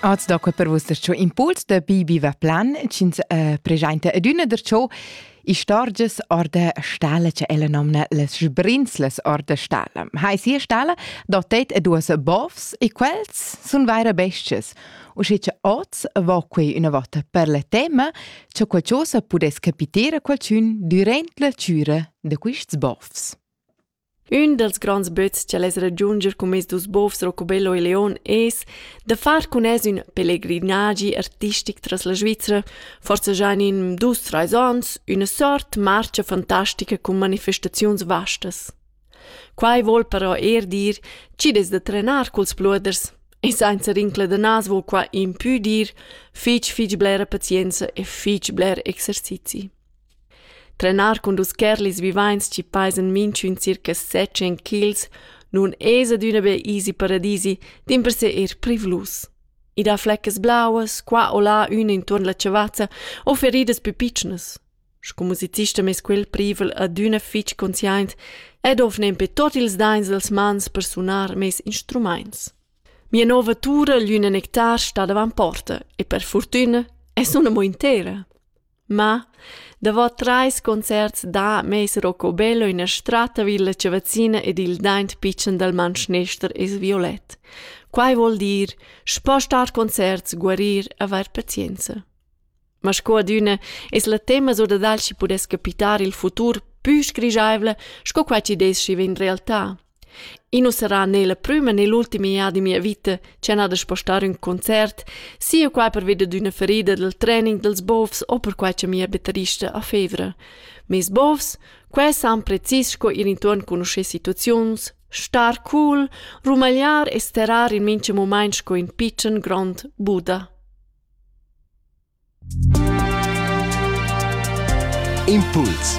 Az da quei per vus da ciò impuls da Bibi Veplan, ch'ins uh, presenta adüna da ciò istorgias orda stala che ella nomna les sbrinzles orda stala. Hai sia stala da teit e duas bovs e quels sun vaira bestias. Usce che oz va quei una volta per le tema che qualcosa pudess capitare qualcun durant la cura da quists bovs. Ün dals gronds böts cha'l es ragiundscher cun meis dus bofs Rocobello e Leon es da far cun els ün pelegrinagi artistic tras la Svizra, forsa già in dus trais ons, üna sort marcha fantastica cun manifestaziuns vastas. Quai voul però eir dir chi'd es da trenar culs pluoders e sainza rincla da nas voul quai impü dir fich fich blera pazienza e fich bler exercizi. Trenar cun dus curlis vivains chi pajan minchün circa setschen kils nun es adüna be easy paradisi, dimpersè eir privlus. I dà fleccas blauas, qua o là üna intuorn la chavazza o feridas pü pitschnas. Sco musicista m'es quel privel adüna fich consciaint ed ho nempe tuot ils daints dels mans per sunar meis instrumaints. Mia nouva tura, l'üna nectar, sta davant porta e per furtüna es ün'amo intera. Ma, davo trais concerts dà meis Rocobello üna stratta vi illa chavazzina ed il daint pitschen dal mantschnester es violet. Quai vuol dir, spostar concerts, guarir, avair pazienza. Ma sco adüna es la tema sur da dal chi pudess capitar il futur pü sgrigiaivla sco quai chi deschi vegn realtà. Ino sarà ne la prüma ne l'ultima jada in mia vita ch'el ha da spostar ün concert, sia quai pervi dad üna ferida dal training dals bovs o perquai cha mia batterista ha fevra. Meis bovs, quai san precis sco ir intuorn cugnuoscher situaziuns, star cool, rumagliar e sterar in mincha mumaint sco ün pitschen grond Buddha. Impuls